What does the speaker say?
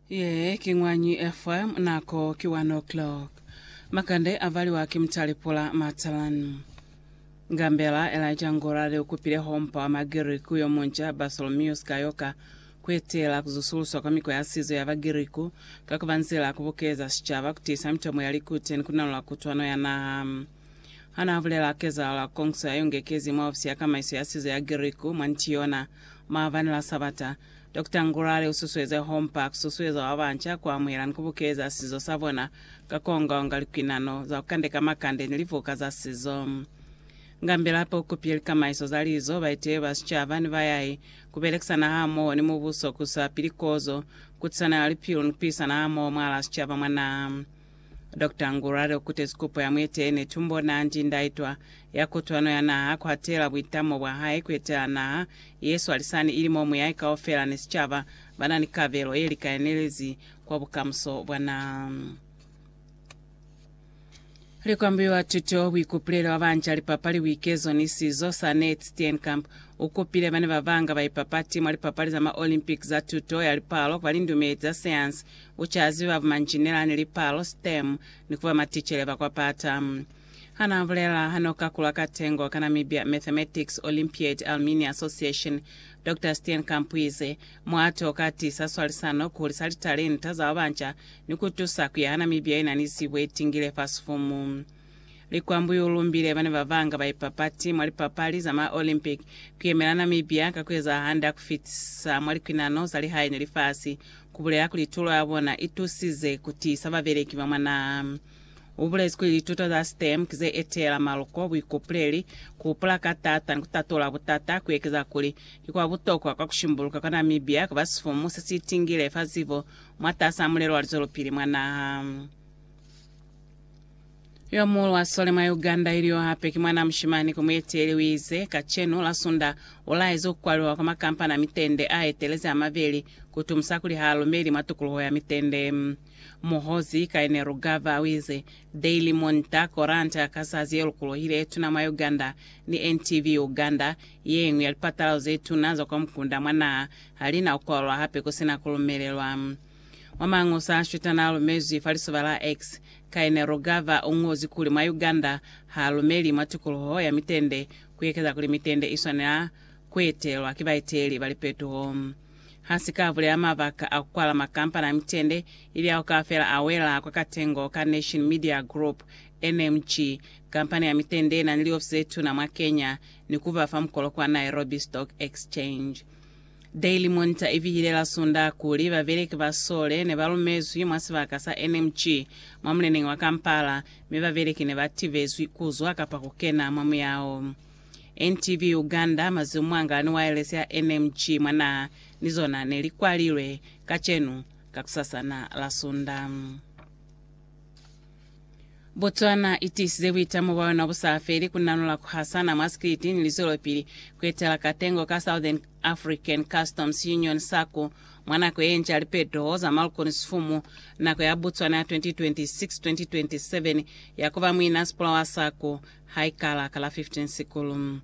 Ye ki Ñwanyi FM, nako ki 1 o'clock. Makande a valiwa ki Mutali Pula Matalan. Ngambela Elijah Ngora le ukupile hompa wa Magiriku yo munca Bartholomeus Kayoka kuetela kuzusuluswa kwa mikwa ya sizo ya Bagiriku ka kuba nzila ya kubukeza sicaba, kutiisa mitomo ya likute ni kunalula kutwano ya naha. Ha n'a bulela kezahala kongiso ya yongekezi mwa ofisi ya kamaiso ya sizo ya Giriku mwa Ntiona, maabani la Sabata, Dokta Ngurare u susueze hompa ku susueza ba banca ku amuhela ni ku bukeza sizo sa bona ka ku onga-onga likuinano za ku kandeka makande ni livuka za sizo. Ngambila hape u kupile likamaiso za lizo, baeteleli ba sicaba, ni bayai ku belekisana hamoho ni mubuso ku isa pili kozo, kutisano ya lipilu ni ku pisana hamoho mwahalaa sicaba mwa naha. Doctor Ngurare ukutezi kupo ya mueteene Tumbo Nandi ndaitwa ya kutwano ya naha kuhatela buitamo bwa hae kuetela naha yeswalisani ili mo muyahe kaufela ni sicaba banani kabelo yelikayanelezi kwa bukamuso bwa naha. Likwambiwa tuto, buikupulelo bwa banca, lipapali, buikezo ni sizo, Sanet Steenkamp ukupile bana babanga baipapati mwa lipapali za ma Olympic za tuto ya lipalo kwa lindumeli za sayansi U ca ziba bumanjinela ni lipalo, stem, ni kuba maticele ba kwa pata. Hana bulela ha no kakulwa ka tengo ka Namibia Mathematics Olympiad Alumni Association, Doctor Steenkamp u ize, Muato o ka tisa swalisano, ku hulisa litalenta za babanca, ni ku tusa ku yaha Namibia ye na ni zibo ye tingile fa sifumu. Likwambu U lumbile bana ba banga ba ipapati mwa lipapali za ma Olympic ku yemela Namibia ka ku eza hande ha ku fitisa mwa likwinano za lihae ni lifasi, ku bulela kuli tulo ya bona i tusize ku tiisa babeleki ba mwa naha. U bulezi kuli lituto za STEM ki ze eteela maluko, buikupuleli, ku hupula ka taata ni ku tatula butata, ku ekeza kuli ki kwa butokwa kwa ku shimbuluka kwa Namibia ku ba sifumu se si itingile fa zibo mwatasaa mulelo wa lizwelopili mwa naha. Yo muulu wa sole mwa Uganda ilyo hape ki mwanaa mushimani ku mueteli uize, Kacenu, Lasunda, ulaezi kukwaliwa kwa makampani a mitende aetelezi amabeli kutumusa kuli haalumeli mwa tukuluho ya mitende. Muhozi Kainerugaba uize, Daily Monitor, koranta ya kazazi yelukuluhile yetuna mwa Uganda, ni NTV Uganda, yeñwi ya lipatalazo zetuna za kwa mukunda mwa naha, halina kukwalwa hape kusina kulumelelwa. Mwa Mañosa a Shweta n'a lumezwi fa lisoba la X, Kaine Rugava u ñozi kuli mwa Uganda ha lumeli mwa tikoloho ya mitende ku ekeza kuli mitende i swanela ku etelwa ki baeteli ba lipetuho. Ha si ka bulela mabaka a ku kwala makampani a mitende, ili ao kaufela a wela kwa katengo ka Nation Media Group, NMG, kampani ya mitende ye na ni liofisi ze tuna mwa Kenya ni ku ba fa mukolo kwa Nairobi Stock Exchange. Daily Monitor i bihile la Sondaha kuli, Babeleki ba sole ne ba lumezwi mwa sibaka sa NMG mwa muleneñi wa Kampala, mi babeleki ne ba tibezwi ku zwa kapa ku kena mwa muyao. NTV Uganda, Mazimu mwangala ni waelesi ya NMG mwa naha ni zona ne li kwalilwe kacenu, kakusasana la Sondaha. Botswana i tiisize buitamo bwa yona bu sa feli ku nanula ku hasana mwa sikiliti ni lizwelopili ku etela katengo ka Southern African Customs Union, SACU, mwa nako ye nca lipeteho za maluko ni sifumu, nako ya Botswana ya 2026-2027 ya ku ba muinasipula wa SACU ha i kala ka la 15 Sikulu.